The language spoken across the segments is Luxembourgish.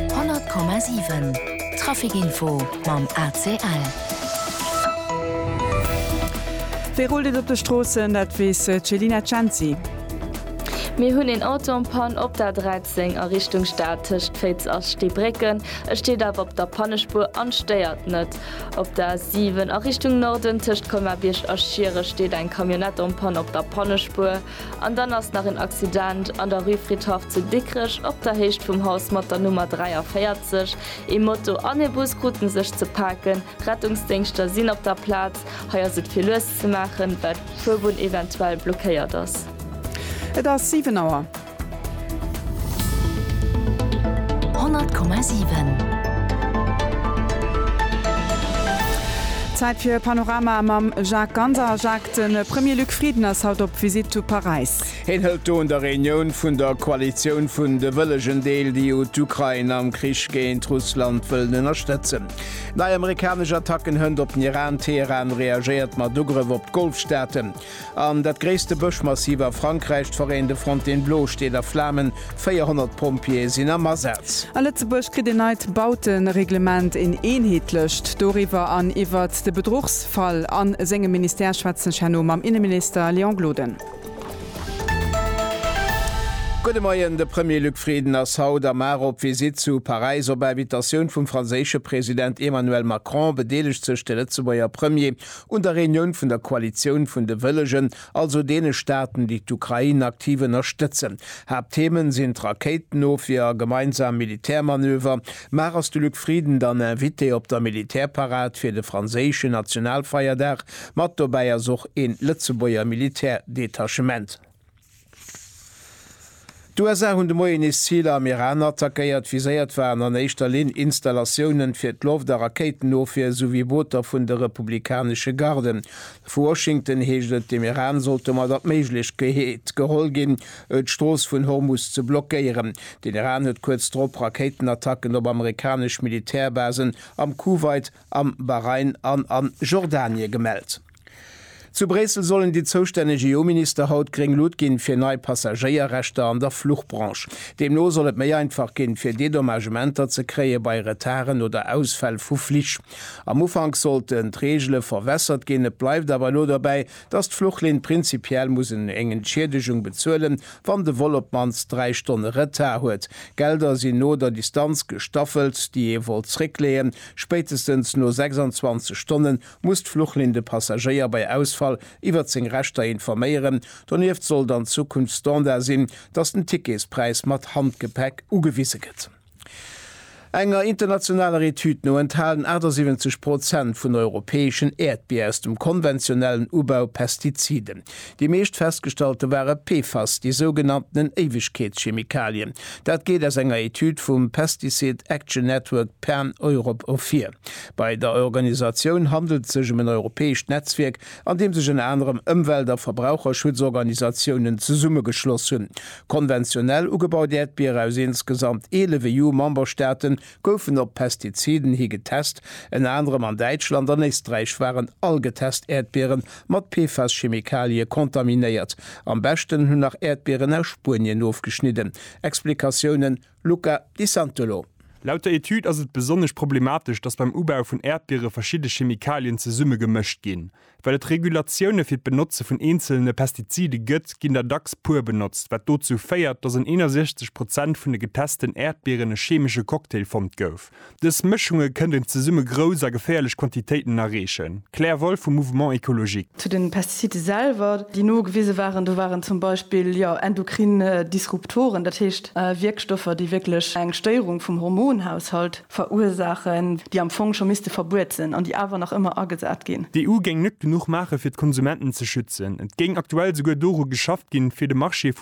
100,7 Traficinfo mam ACL. Wéi rullt et op de Stroossen? Dat weess d'Selina Cenci. Mir hunn een Auto en panne op der 13 a Richtung Stad tëscht Féiz a Steebrécken. E steet awer op der Pannespuer an stéiert net. Op der A7 a Richtung Norden tëscht Colmar-Bierg a Schiere steet eng Camionnette en panne op der Pannespuer. An dann ass nach en Accident an der Rue Fridhaff zu Dikrech, op der Héicht vum Haus mat der Nummer 43. Ee Moto an ee Bus kruten sech ze paken. Rettungsdéngschter sinn op der Plaz. Hei ass et fir lues ze maachen, well d'Fuerbunn eventuell blockéiert ass. Et ass 7 Auer. 100,7. Zäit fir Panorama mam Jacques Ganser. Jacques, de Premier Luc Frieden ass haut op Visitt zu Paräis. Heen hëlt do un der Reunioun vun der Koalitioun vun de wëllegen deel, déi jo d'Ukrain am Krich géint Russland wëllen ënnerstëtzen. Nei amerikanesch Attacken, Hënt op den Iran, Teheran reagéiert mat Ugrëff op d'Golfstaaten. An dat gréisste Bëschmassiv a Frankräich, d'Foraine de Fontainebleau, steet a Flamen, 400 Pompjeeë sinn am Asaz. A Lëtzebuerg kritt een neit Bautereglement, een eenheetlecht. Doriwwer an iwwert de Bedruchsfall a sengem Ministère schwätzen ech herno mam Inneminister Léon Gloden. Gudde Moien, De Premier Luc Frieden ass haut am ar op Visitt zu Paräis. Op Invitatioun vum franséische President Emmanuel Macron bedeelegt sech de Lëtzebuerger Premier Un der Reunioun vun der Koalitioun vun de Wëllegen, also deene Staaten, déi d'Ukrain aktiv ënnerstëtzen. Haaptthemen sinn d'Rakéitenofwier a gemeinsam Militärmanöver. Mar ass de Luc Frieden dann Invité op der Militärparad fir de franséischen Nationalfeierdag. Mat dobäi ass och een Lëtzebuerger Militärdetachement. D'USA hunn de Moien nees Ziler am Iran attackéiert. Viséiert waren an éischter Linn Installatiounen fir d'Loft a Rakéitenofwier souwéi Booter vun de republikanesche Garden. Vu Washington heescht et, dem Iran sollt domadder d'Méiglechkeet geholl ginn, d'Strooss vun Hormus ze blockéieren. Den Iran huet kuerz drop Rakéitenattacken op amerikanesch Militärbasen am Kuwait, am Bahrain an a Jordanie gemellt. Zu Bréissel sollen déi zoustänneg EU-Minister haut gréng Lut ginn, fir nei Passagéierrechter an der Fluchbranche. Deemno soll et méi einfach ginn, fir Dedommagementer ze kréie bei Retarden oder Ausfäll vu Flich. Am Ufank sollten d'Reegele verwässert ginn, et bleift awer elo dobäi, datt d'Fluchlinn prinzipiell muss eng Entschiedegung bezuelen, wann de Vol op d'mannst dräi Stonne Retard huet. D'Gelder sinn no der Distanz gestaffelt, déi ee wollt zréckleeën. Spéitestens no 26 Stonnen muss d'Fluchlinn de Passagéier bei Ausfall iwwert seng Rechter informéieren. Donieft sollt an Zukunft Standard sinn, dass den Ticketspräis mat Handgepäck ugewise gëtt. Enger internationaler Etüd no enthalen 78 Prozent vun europäeschen Äerdbier aus dem konventionellen Ubau Pestiziden. Déi meescht festgestallte ware PFAS, déi sougenanntenen Éiwegkeetschemikalien. Dat geet aus enger Etüd vum Pesticide Action Network Pan-Europe ervir. Bei der Organisatioun handelt et sech ëm en europäescht Netzwierk, an deem sech ënner anerem Ëmwelt a Verbraucherschutzorganisatiounen zesummegeschloss hunn. Konventionell ugebaut Äerdbiere aus insgesamt 11 EU-Memberstaate goufen op Pestiziden hi getest. Ënner anerem an Däitschland an Éisträich waren all getest Äerdbiere mat PFAS-Chemikalië kontaminéiert. Am beschten hunn nach Äerdbieren aus Spuenien ofgeschnidden. Explikatiounen? Luca Di Santolo. Laut der Etüd ass et besonnesch problematesch, datt beim Ubau vun Äerdbiere verschidde Chemikalien zesumme gemëscht ginn. Well et Regulatioune fir d'Benotze vun eenzelene Pestizide gëtt, ginn der dacks puer benotzt, wat dozou féiert, datt an 61 Prozent vun de getesten Äerdbieren e chemesche Cocktail fonnt gouf. Dës Mëschunge kënnt een zesumme grouss a geféierlech Quantitéiten erreechen. Claire Wolff vum Mouvement Ecologique. Zu den Pestizide selwer, déi nogewise waren, do waren zum Beispill, jo, endokrin Disruptoren, dat heescht Wierkstoffer, déi wierklech eng Stéierung vum Hormonhaushalt verursaachen, déi am Fong scho misste verbuet sinn an déi awer nach ëmmer agesat ginn. D'EU géing net genuch maache fir d'Konsumenten ze schützen. Et géing aktuell souguer doru geschafft ginn, fir de Marché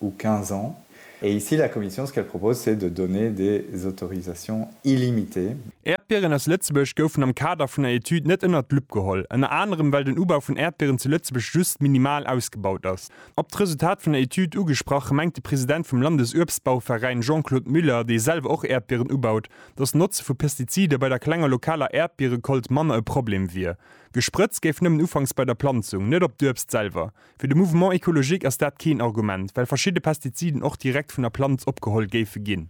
ou 15 ans, et ici la Commission ce qu'elle propose c'est de donner des autorisations illimitées. Äerdbieren aus Lëtzebuerg goufen am Kader vun der Etüd net ënnert d'Lupp geholl, ënner anerem well den Ubau vun Äerdbieren zu Lëtzebuerg just minimal ausgebaut ass. Op d'Resultat vun der Etüd ugesprach, mengt de President vum Landesuebstbauveräin Jean-Claude Müller, dee selwer och Äerdbieren ubaut, datt d'Notze vu Pestizide bei der klenger lokaler Äerdbierekolt manner e Problem wier. Gesprëtzt géif nëmmen ufanks bei der Planzung, net op d'Uebst selwer. Fir de Mouvement écologique ass dat keen Argument, well verschidde Pestiziden och direkt vun der Planz opgeholl géife ginn.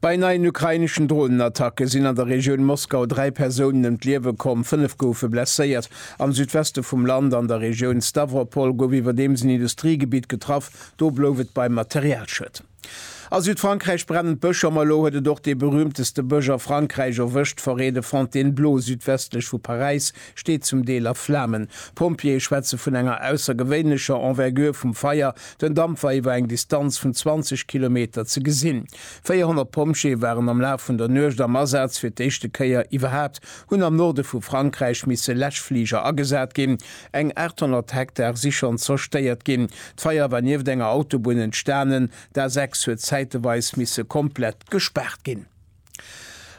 Bei neien ukraineschen Dronenattacke sinn an der Regioun Moskau dräi Persounen ëm d'Liewe komm, fënnef goufe blesséiert. Am Südweste vum Land an der Regioun Stawropol gouf iwwerdeems en Industriegebitt getraff, do blouf et beim Materialschued. A Südfrankräich brennen d'Bësch a malo huet et och dee berühmteste Bësch a Frankräich erwëscht. D'Forêt de Fontainebleau südwestlech vu Paräis steet zum Deel a Flamen. D'Pompjeeë schwätze vun enger aussergewéinlecher Envergure vum Feier, den Damp war iwwer eng Distanz vun 20 Kilometer ze gesinn. 400 Pompjeeë waren am Laf vun der Nuecht am Asaz. Fir d'éischte Kéier iwwerhaapt hunn am Norde vu Frankräich misse Läschfliger agesat ginn. Eng 800 Hektar si schonn zerstéiert ginn. D'Feier war nieft enger Autobunn entstanen. D'A6 huet zäiteweis misse komplett gespaart ginn.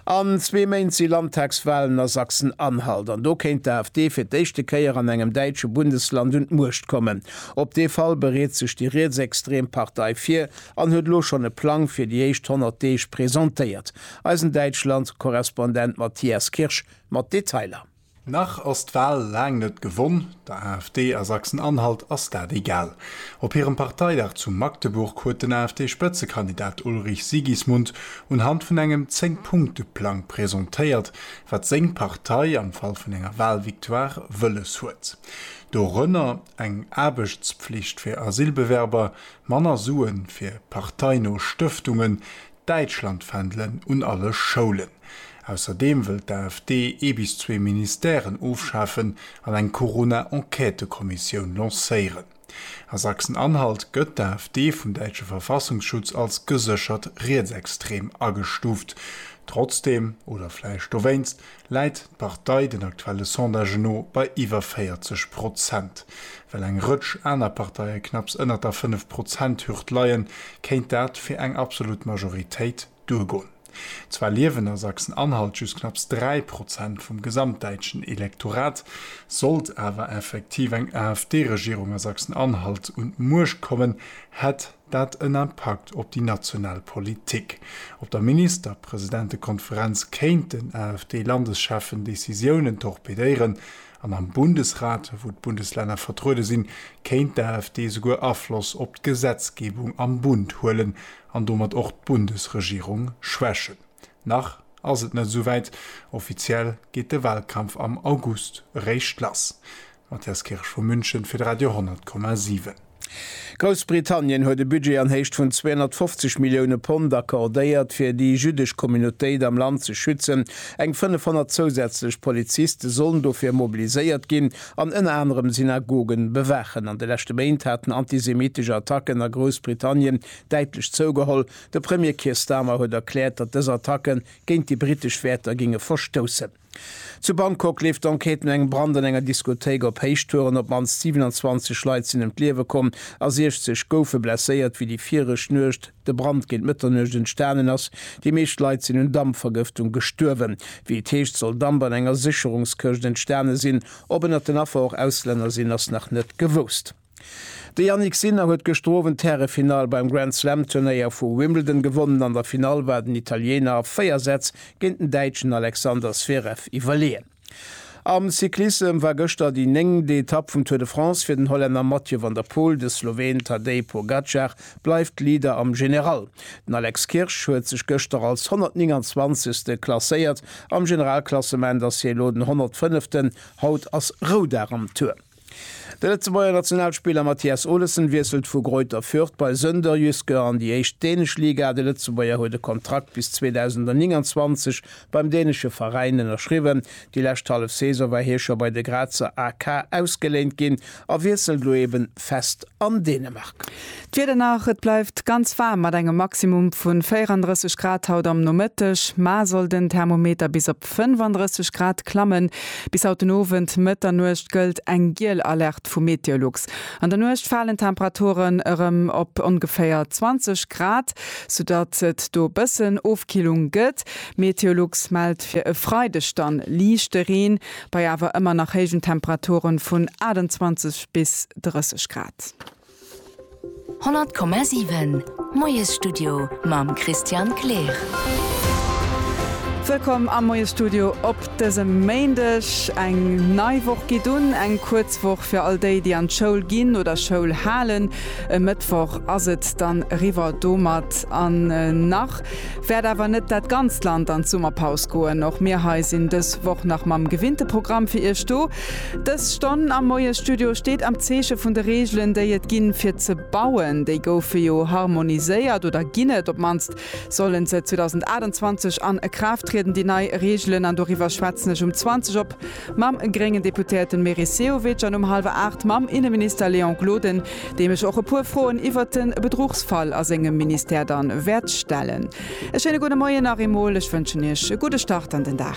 An zwee Méint si Landtagswalen a Sachsen-Anhalt an do kéint d'AfD fir d'éischte Kéier an engem däitsche Bundesland un d'Muecht kommen. Op dee Fall bereet sech déi rietsextrem Partei vir an huet elo schonn e Plang fir déi éischt 100 Deeg presentéiert. Eisen Däitschland-Korrespondent Matthias Kirsch mat Detailer. Nach ass d'Wal laang net gewonn, der AfD a Sachsen-Anhalt ass dat egal. Op hirem Parteidag zu Magdeburg huet den AfD-Spëtzekandidat Ulrich Sigismund unhand vun engem Zéng-Punkte-Plang presentéiert, wat seng Partei am Fall vun enger Walvictoire wëlles huet. Dorënner eng Aarbechtspflicht fir Asylbewerber, manner Sue fir parteino Stëftungen, Däitschlandfändelen un alle Schoulen. Ausserdeem wëllt d'AfD ee bis zwee Ministèren ofschafen an eng Corona-Enquêtekommissioun lancéieren. A Sachsen-Anhalt gëtt d'AfD vum däitsche Verfassungsschutz als geséchert rietsextrem agestuuft. Trotzdeem, oder vläicht dowéinst, läit d'Partei den aktuelle Sondagen no bei iwwer 40 Prozent. Well eng Rëtsch aner Parteie knapps ënnert der fënnef Prozent-Hürd leien, kéint dat fir eng absolut Majoritéit duergoen. Zwar liewen a Sachsen-Anhalt just knapps dräi Prozent vum gesamtdäitschen Elektorat. Sollt awer effektiv eng AfD-Regierung a Sachsen-Anhalt un d'Muecht kommen, hätt. dat en Impakt op déi national Politik, op der Ministerpresidentekonferenz kéint den AfD-Landescheffen Decisiounen torpedéieren an am Bundesrat, wou d'Bundeslänner vertruede sinn, kéint d'AfD souguer Afloss op d'Gesetzgebung am Bund huelen an domat och d'Bundesregierung schwächen. Nach ass et net esouwäit, offiziell geet de Wahlkampf am August eréischt lass. Matthias Kirsch vu München fir de Radio 10,7. Groussbritannien huet e Budget an Héicht vun 250 Millioune Pond accordéiert, fir déi jüddesch Communautéit am Land ze schützen. Eng 500 zousätzlech Poliziste sollen dofir mobiliséiert ginn an ënner anerem Synagogen bewaachen. An de leschte Méint haten antisemittesch Attacken a Groussbritannien däitlech zougeholl. De Premier Keir Starmer huet erkläert, datt dës Attacke géint déi britesch Wäerter géinge verstoussen. Zu Bangkok leeft d'Enquête no engem Brand an enger Diskothéik op Héichtouren. Op d'mannst 27 Leit sinn ëm d'Liewe komm a 60 goufe blesséiert, wéi déi viregt Nuecht de Brand géint Mëtternuecht entstanen ass. Déi meescht Leit sinn un Dampvergëftung gestuerwen. Wéi et heescht, soll Damp an enger Sécherungskëscht entstane sinn. Ob ënnert den Affer och Auslänner sinn, ass nach net gewousst. De Jannik Sinner huet gëschter Owend d'Härefinall beim Grand Slam Turnéier vu Wimbledon gewonnen. An der Finall war den Italiener a 4 Sätz géint den Däitschen Alexander Zverev iwwerleeën. Am Cyclissem war gëschter déi néngent Etapp vum Tour de France fir den Hollänner Mathieu van der Poel. De Sloween Tadej Pogacar bleift Leader am General. Den Alex Kirsch huet sech gëschter als 129. klasséiert am Generalklassement ass hie elo den 105. Haut ass Roudag am Tour. De Lëtzebuerger Nationalspiller Mathias Olesen wiesselt vu Greuther Fürth bei Sønderjyske an déi éischt dänesch Liga. De Lëtzebuerger huet e Kontrakt bis 2029 beim dänesche Veräin ënnerschriwwen. Déi lescht hallef Saison war hie scho bei de Grazer AK ausgeléint ginn a wiesselt elo ebe fest an Dänemark. D'Wieder nach, Et bleift ganz waarm mat engem Maximum vu 34 Grad haut am Nomëtteg, mar soll den Thermometer bis op 35 Grad klammen. Bis haut den Owend, Mëtternuecht, gëllt eng giel Alerte vu Meteolux. An der Nuecht falen d'Temperaturen erëm op ongeféier 20 Grad, soudatt et do bëssen Ofkillung gëtt. Meteolux mellt fir e Freideg dann liichte Reen, bei awer ëmmer nach héijen Temperaturen vun 28 bis 30 Grad. 100,7 Moiesstudio mam Christian Kleer. Wëllkomm am Moiesstudio op dësem Méindeg. Eng nei Woch geet un, eng kuerz Woch fir all déi, déi an d'Schoul ginn oder Schoul halen. E Mëttwoch ass et dann eriwwer domat an nach wäert awer net dat ganzt Land an d'Summerpaus goen. Och mir hei sinn dës Woch nach mam gewinnte Programm fir Iech do. Dës Stonn am Moiesstudio steet am Zeeche vun de Reegelen, déi et ginn, fir ze bauen. Déi goufe jo harmoniséiert, oder ginn et op d'mannst. Sollen se 2028 an e Kraaft trieden, déi nei Reegelen? An doriwwer schwätzen ech um 20 op mam gréngen Deputéierten Meris Sehovic an um hallwer aacht mam Inneminister Léon Gloden, deem ech och e puer Froen iwwert de Bedruchsfall a sengem Ministère dann wäert stellen. E schéine gudde Moien nach eemol. Ech wënschen Iech e gudde Start an den Dag.